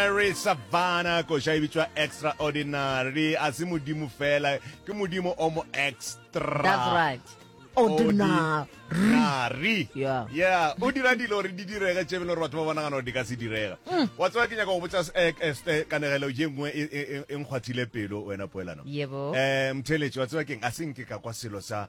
Mary Savannah koša e bitšwa extraordinary a se modimo fela ke modimo o mo extra That's right. Ordinary. nari Yeah. yeah o dira dilo gore di direge tše bele gore batho ba bonagana gore di ka se direga wa tseba ke nyaka go botsa s- eh, eh, ste- kanegelo je nngwe e- e e- e nkgwathile pelo wena poelano Yebo. um mtheletši wa tseba keng a se nke ka kwa selo sa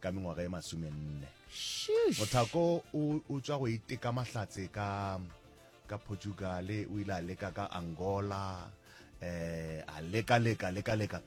ka mengwaga e masomenne mothako o tswa go iteka mahlatse ka ka portugal o ile a leka ka angola eh a leka leka leka leka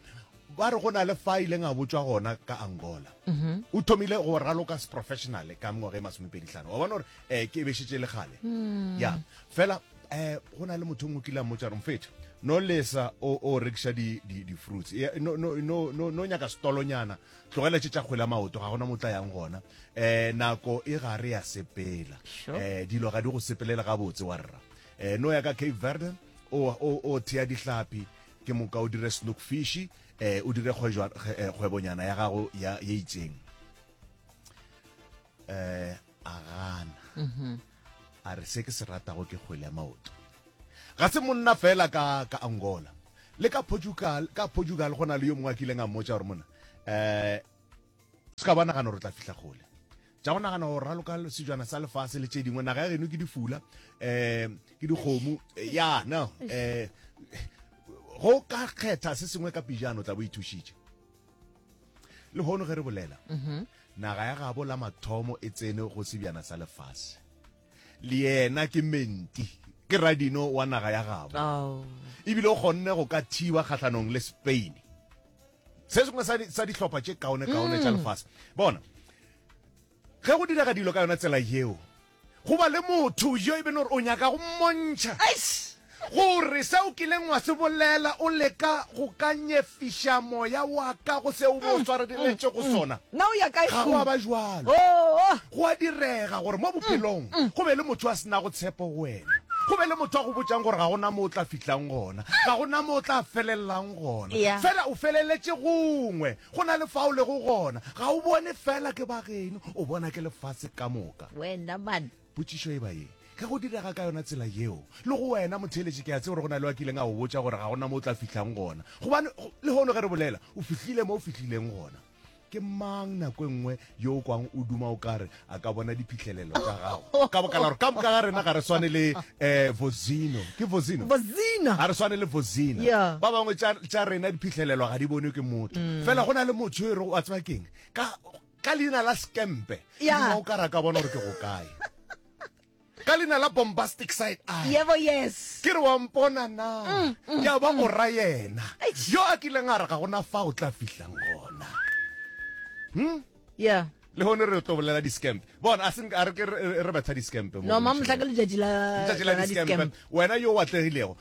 ba re go na le fa ileng a botswa gona ka angola mhm. o thomile go raloka se professional ka mengwaga e masomepeditlhano wa bona gore um ke bešetse le gale hmm. ya fela um go na le motho ngwe kile a mmotsa gore mfetho no lesa o rekiša di-fruits no nyaka setolonyana Tlogela tše tša kgwele ya maoto, ga gona mo tla yang gona. Eh, nako e gare ya sepela. Sure. Eh, dilo ga di go sepelele gabotse wa rra. Eh, no ya ka Cape Verde, o, o, o thea dihlapi, ke moka o dire snook fish, eh, o dire kgwejwa, kge- eh, kgwebonyana ya gago ya, ye itseng. Eh, a gana. A re, Se ke se ratago ke kgwele ya maoto. Ga se monna feela ka, ka Angola. Le ka Portugal, ka Portugal go na le yo mongwe a kileng a mmotša gore, Monna, um, se ka ba nagana gore o tla fihla kgole. Tša go nagana go raloka sejwana sa lefase le tše dingwe, naga ya geno ke difula, um, ke dikgomo, ya, no, um, go ka kgetha se sengwe ka pejana o tla bo ithušitše. le hono ge re bolela mhm. naga ya gabo la mathomo e tsene go sebjana sa lefase le yena ke menti ke radino wa naga ya gabo oh. ebile o kgonne go ka thiba kgatlhanong le spain se sengwe sa dihlopha tše kaone kaone tša mm. lefase bona Ge go direga dilo ka yona tsela yeo, go ba le motho yo e beno gore o nyaka go mmontšha gore se o kileng wa se bolela o leka go ka nyefiša moya wa ka go se o bo o swareletše go sona. Na o ya kae? Ga go a ba bjalo. Go a direga gore mo bophelong go be le motho yo a se nago tshepo go wena, go be le motho a go botšang gore ga go na mo o tla fihlang gona, ga go na mo o tla felelelang gona, feela o feleletše gongwe. Go na le fa o lego gona, ga o bone fela ke ba geno, o bona ke lefase ka moka. Wena man! Potšišo e ba ye, Ge go direga ka yona tsela yeo, le go wena motheeletši, ke a tseba gore go na le yo a kileng a go botša gore ga go na mo o tla fihlang gona. Gobane, lehono ge re bolela, o fihlile mo o fihlileng gona. Ke mang nako e nngwe yo o kwang o duma o kare a ka bona diphihlelelo tša gago ka baka la gore ka moka ga rena ga re swane le um vozino ke vozino vozina ga re swane le vozina Yeah. ba bangwe tša tša rena diphihlelelo ga di bonwe ke motho fela go na le motho yo e rego wa tseba keng ka ka leina la sekempe Yeah. duma o kare a ka bona gore ke go kae Ka leina la bombastic side eye. Yebo, yes. Ke re wa mpona na? Mm, mm, ya ba mm. o ra yena. Eish. Yo a kileng a re ga gona fa o tla fihlang gona. Hmm? Yeah. le hone re tlo bolela di-scamp bona a seng a re ke re betha di-scamp no ma motla ke letšatši la letšatši la di-scamp wena yo o atlegilego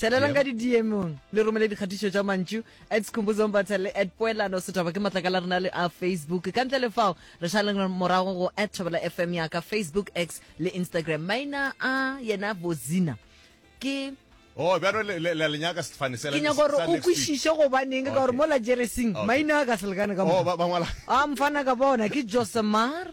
Tshelelang ka didiemong le romele dikgatišo tša mantšu at sekhumbuzong batsa le at poelano setaba ke matlakala rena le a facebook ka ntle le fao re šaleng morago go at thobela fm ya ka facebook x le instagram maina a yena bozina ke Oh, bjano le le le nyaka sefane sela. Ke nyaka gore o kwishiše go baneng ka gore mola Jeresing maina a ka selekane ka mo. Oh, ba ba ngwala. A mfana ka bona ke Josemar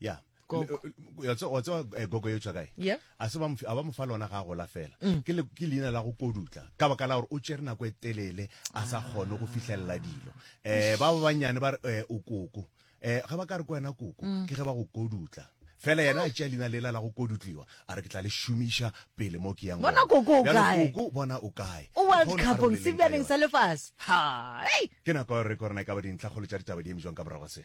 ya Gogo. Le- le- ya tse- wa tseba eh, gogo yo tswakae Yeah. a se ba mf- a ba mo fa lona ga a gola fela Mm. ke le- ke leina la go kodutla ka baka la gore o tsere nako e telele a sa kgone go fitlhelela dilo um ba ba bannyane ba re eh, o koko um ga ba ka re ko wena koko Mm. ke ge ba go kodutla fela yena a tšea leina lela la go kodutliwa a re ke tla le šomiša pele mo ke yang Bona gona. koko o Bjale kae? koko bona o kae o Ke world kgone a re cupong boleleng ka sebjaneng yona. sa lefase ha ei ke nako ya gore re korona e ka ba dintlhakgolo tša ditaba di eme jwang ka morago ga se